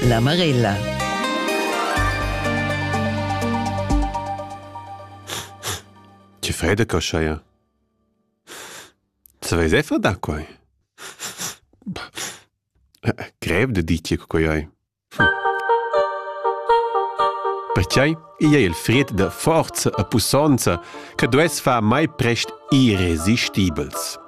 La Marella. Ti fai da coschaia? Saveis effa da quai? Grev da dir che quai hai. Pertgei igl è il fred da forza e pussonza che duess far mai prest irresistibels.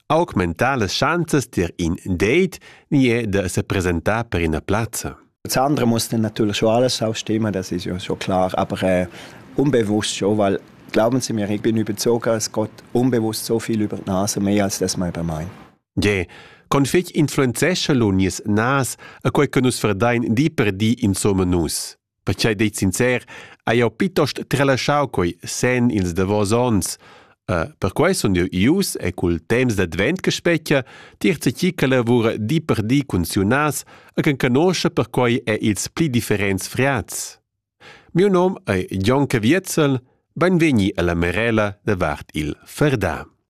augmentar las schanzas dir in date ni è da sepresentar per ina plazza. Das andere muss dann natürlich schon alles aufstimmen, das ist ja schon klar, aber äh, unbewusst schon, weil glauben Sie mir, ich bin überzeugt, es geht unbewusst so viel über die Nase, mehr als das man über mein. Ja, config influenzescha lo nies nas a quei che nus verdein di per di insomma nus. Pertgei dei sincer, hai jeu pitost trelaschau quei sen ils davos onns. Uh, perquei sun jeu ius e cul temps d'advent che spetgia tier tgi che lavura di per di cun siunas e che conoscia perquei è ils pli differents friats. Miu nom è Jon Caviezel, benvegni alla Merela davart il Ferdà.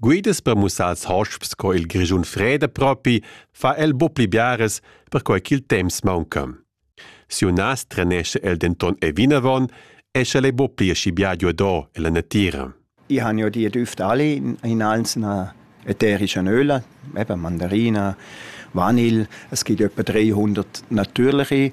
Guidas per mussar als hosps co il Grischun freda propi, fa el bu pli biaras, perquai ch'il temps maunca. Siu nas trenescha el denton e vinavon e sch'el ei bu pli aschi bia giuador ella natira. Ich habe ja die Düfte alle in einzelner ätherischen Öle, eben Mandarina, Vanille. Es gibt etwa 300 natürliche.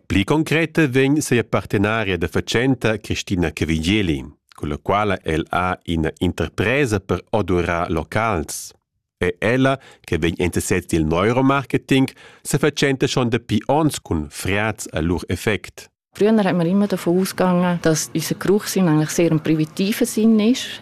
Pli concreta vegn sia partenaria da fatschenta Christina Cavigeli, con la quala el ha ina interpresa per odurar locals. E ella, che vegn interessat dil neuromarketing, se fatschenta schon dapi ons cun friaz a lur effect. Früher haben wir immer davon ausgegangen, dass unser Geruchssinn eigentlich sehr im privativen Sinn ist.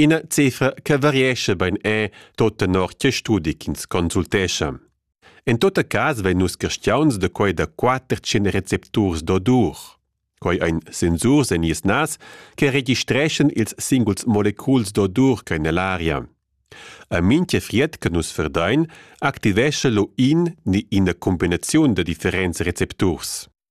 Ina cifra che variescha bein è, tot tenor che studi ch'ins consultescha. En tot cas vein nus castiauns da quei da quater tschien recepturs d'odur. Quei ein sensurs en nies nas che registreschan ils singuls moleculs d'odur che nell aria. A mintga fried che nus verdein activescha lo in ni ina combinaziun da differents recepturs.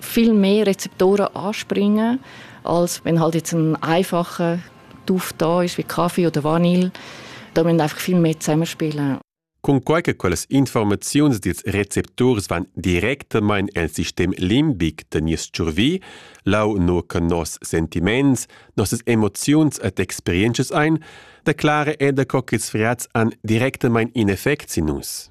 viel mehr Rezeptoren anspringen, als wenn halt jetzt ein einfacher Duft da ist wie Kaffee oder Vanille. Da müssen einfach viel mehr zusammenspielen. Cunquai che quellas informaziuns dils recepturs van directamain el sistem limbic da nies tschurvi, lau no che nos sentiments, nossas emoziuns et experiences ein, declare eda co ch'ils friats han directamain in effect sin nus.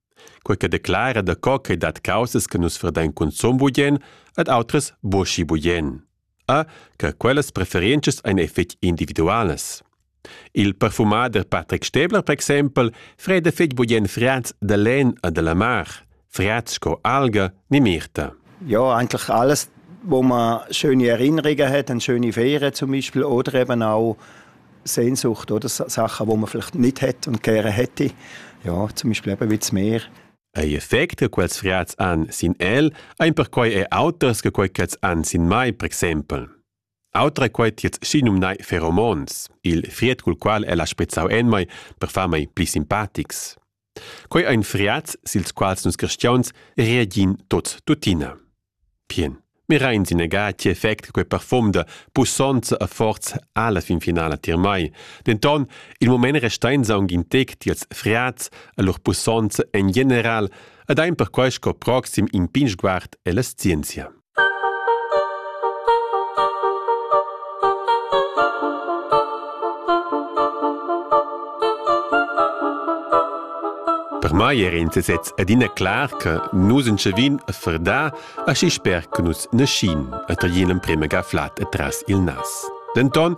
Quei che declara daco ch'ei dat caussas che nus verdein cunzun bugien ed outras buca bugien. A, che quellas preferientschas ein fetg individualas. Il perfumader Patrick Stäbler, per exempel, freda fetg bugien friats da len e della mar, friats sco alga ni mirta. Ja, eigentlich alles, wo man schöne Erinnerungen hat, eine schöne Ferien zum Beispiel, oder eben auch Sehnsucht, oder Sachen, die man vielleicht nicht hat und gerne hätte. Ja, zum Beispiel eben wie das Meer. Ei effect che quels frats han sin el, ein perquei e auters che quei ch'els han sin mai, per exempel. Autra quei tiets schinum nai pheromones, il fried cul qual el ha spezzau en mai per far mei pli simpatics. Quei ein friats sils quals nus cristiauns reagin tots tuttina. Pien. Mirain sin egar ti effect quei parfum da pussonza a forza alla fin finala tier mai. Denton, il moment restein aunc in tec tiels friats a lur pussonza en general ed ein perquei sco proxim in pin sguard ella scienzia. Per mai era in sesez adina clar che nus entschavin a fardar aschi sper che nus naschin e taglin emprema ga flat atras il nas. Denton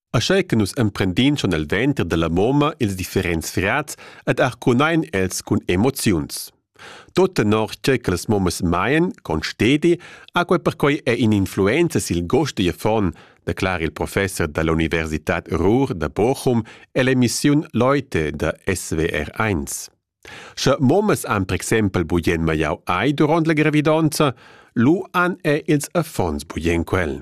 Aschei che nus emprendin schon el venter dalla moma ils differents frats ed arcunein els cun emoziuns. Tut tenor tgei che las momas maien, con stedi, ha quei perquei è in'influenza sil gost digl affon, declara il professor dall'Universitad Ruhr da Bochum ell'emissiun Leute da SWR1. Sche momas han per exempel bugen maiau ei duront la gravidonza, lu han er ils affons bugen quel.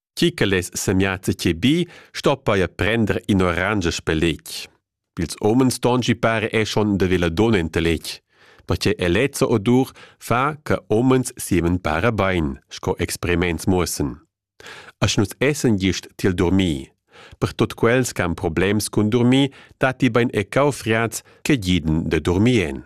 Chi che less semiazza che bi, sto paia prender in orange speleg. Ils homens tongi pare è schon de vela don enteleg. Ma che elezza odur fa che homens siemen para bein, sco experiments muossen. Asch nus essen gist til dormir. Per tot quels che han problems cun dormir, dati bein e caufriats che giden de dormien.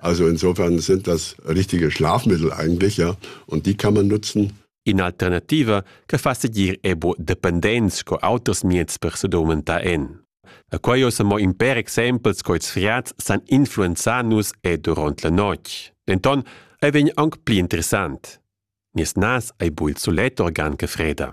Also insofern sind das richtige Schlafmittel eigentlich, ja, und die kann man nutzen. In alternativa che fa seguir ebo dependents sco auters mieds per se domenta en. A quai ossa mo in per exempels co ils friats san influenzar nus e durant la notg. Denton ei vegn aunc pli interessant. Nies nas ei bul sulet organ che freda.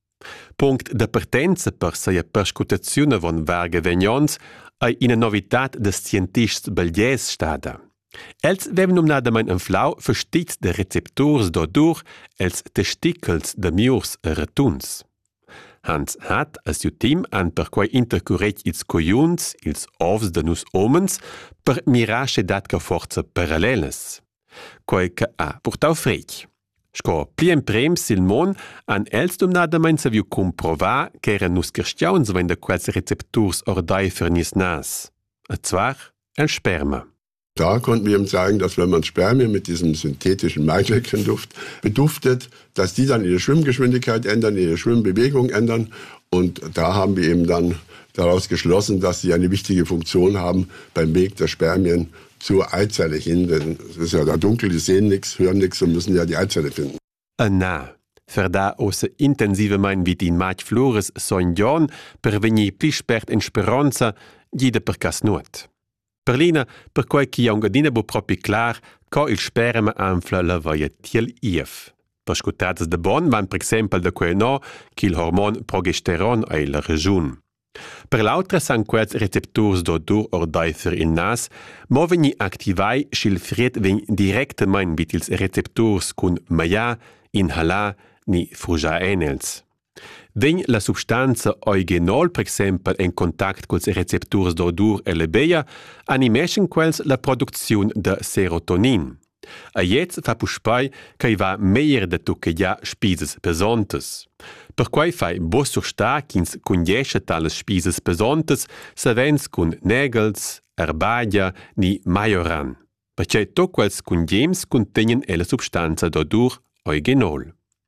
Punct da partenza per sia perscrutaziun avon varga vegnonts ei ina novitad da scientists belgiers stada. Els vevan numnadamein anflau fastits da recepturs d'odur els testicals da miurs e retuns. Hans Hatt e siu team han perquei intercuretg ils coiuns, ils ovs da nus homens, per mirar sche dat ca forza parallelas. Quei che ha purtau fretg. Sco pli emprems sil mon han els dumnadamein saviu cumprovar ch'era nus carstgauns vein da quels recepturs ordeifer nies nas. E zwar el sperma. Da konnten wir ihm sagen, dass wenn man Spermien mit diesem synthetischen Maischäckchenduft beduftet, dass die dann ihre Schwimmgeschwindigkeit ändern, ihre Schwimmbewegung ändern. Und da haben wir eben dann daraus geschlossen, dass sie eine wichtige Funktion haben beim Weg der Spermien zu Eizelle hinden ist ja da dunkel die sehen nix hören nix und müssen ja die Eizelle finden E na, verda ose intensive mein vit in matg flores sogn Jon per vegnir pli spert in speronza gida per cas nuot. Per lina, perquai chi aunc adina bu propi clar, co il sperema anfla la vaia tiel IF. Perscutazes de bon van per exempel da quei no, ch'il hormon progesteron ei la regiun. Per l'autra san quels recepturs d'odur ordaifer il nas mo vegnir activai sch'il fried vegn directamein vid ils recepturs cun magliar, inhalar ni frusciar enels. Vegn la substanza eugenol per exempel en contact culs recepturs d'odur e lebeia, animeschan quels la producziun da serotonin. A gliez fa puspei ch'ei va meglier da tucchegiar spisas pesontas. Perquei fai buca surstar ch'ins cundiescha talas spisas pesontas savens cun negels, erbagia ni maioran, pertgei tut quels cundiems cuntegnan ella substanza d'odur origenol.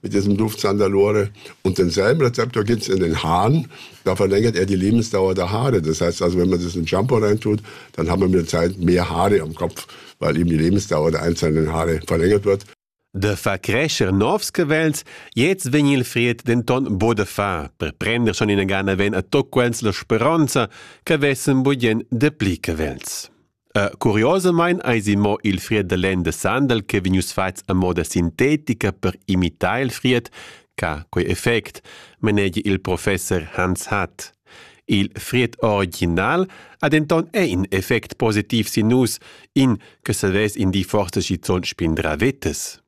mit diesem Duftzahn da Lore. Und denselben Rezept gibt's in den Haaren. Da verlängert er die Lebensdauer der Haare. Das heißt also, wenn man das in Shampoo reintut, dann haben wir mit der Zeit mehr Haare am Kopf, weil eben die Lebensdauer der einzelnen Haare verlängert wird. De fa crescer novs cavels, jetzt vegn il fried denton bo de fa, per prender schon in gana ven a toc quels la speronza, che vessen budien de pli cavels. Uh, curiosamain eisi mo il fried da lenn da sandal che vegnius fatgs a moda sintetica per imitar il fried ca quei effect manegia il professor Hans Hatt. Il fried original ha denton è in effect positiv sin nus, in che savess in di forse schizun spindra vetes.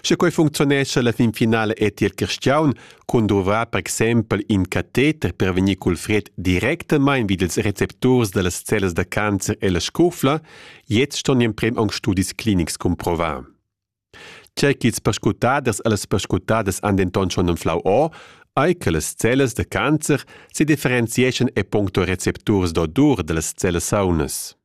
Sche quei funcziunescha la finfinala è tier Cristiaun cun duvrar per exempel in cateter per vegnir cul fred directamain vid ils recepturs dallas cellas da cancer e la scufla, jetzt ston gli emprem aunc studis clinics cumprovar. Tgei ch'ils perscrutaders e las perscrutaders han denton schon enflau o, ei che las cellas da cancer sedifferenzieschan e puncto recepturs d'odur dallas cellas saunas.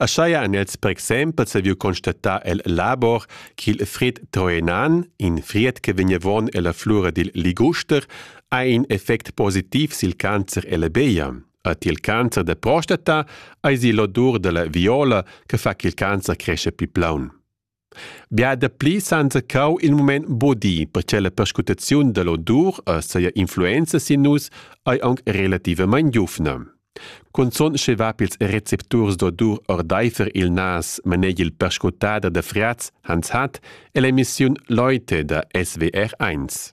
Aschia han els per exempel saviu constatar el labor ch'il Fred Troenan, in fried che vegnevon ella flura dil liguster, ha in effect positiv sil cancer ella beia. A ti il cancer da prostata eisi l'odur dalla viola che fa ch'il cancer cresce pli plaun. Bia dapli s'han zaccau il mument bodì, perche la perscrutaziun da l'odur e saja influenza sin nus ei aunc relativamein giuvna. Cunzun sche va pils recepturs d'odur ordeifer il nas maneg il perscrutader da Friaz Hans Hatt e l'emissiun Leute da SWR1.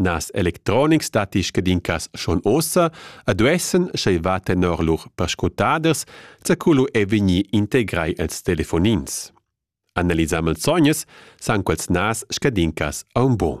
Nas electronics datti scadincas schon ossa e duessan, sch'ei va tenor lur perscrutaders, zaculu è vegnir integrai els telefonins. Analisà malsognas san quels nas scadincas a un bon.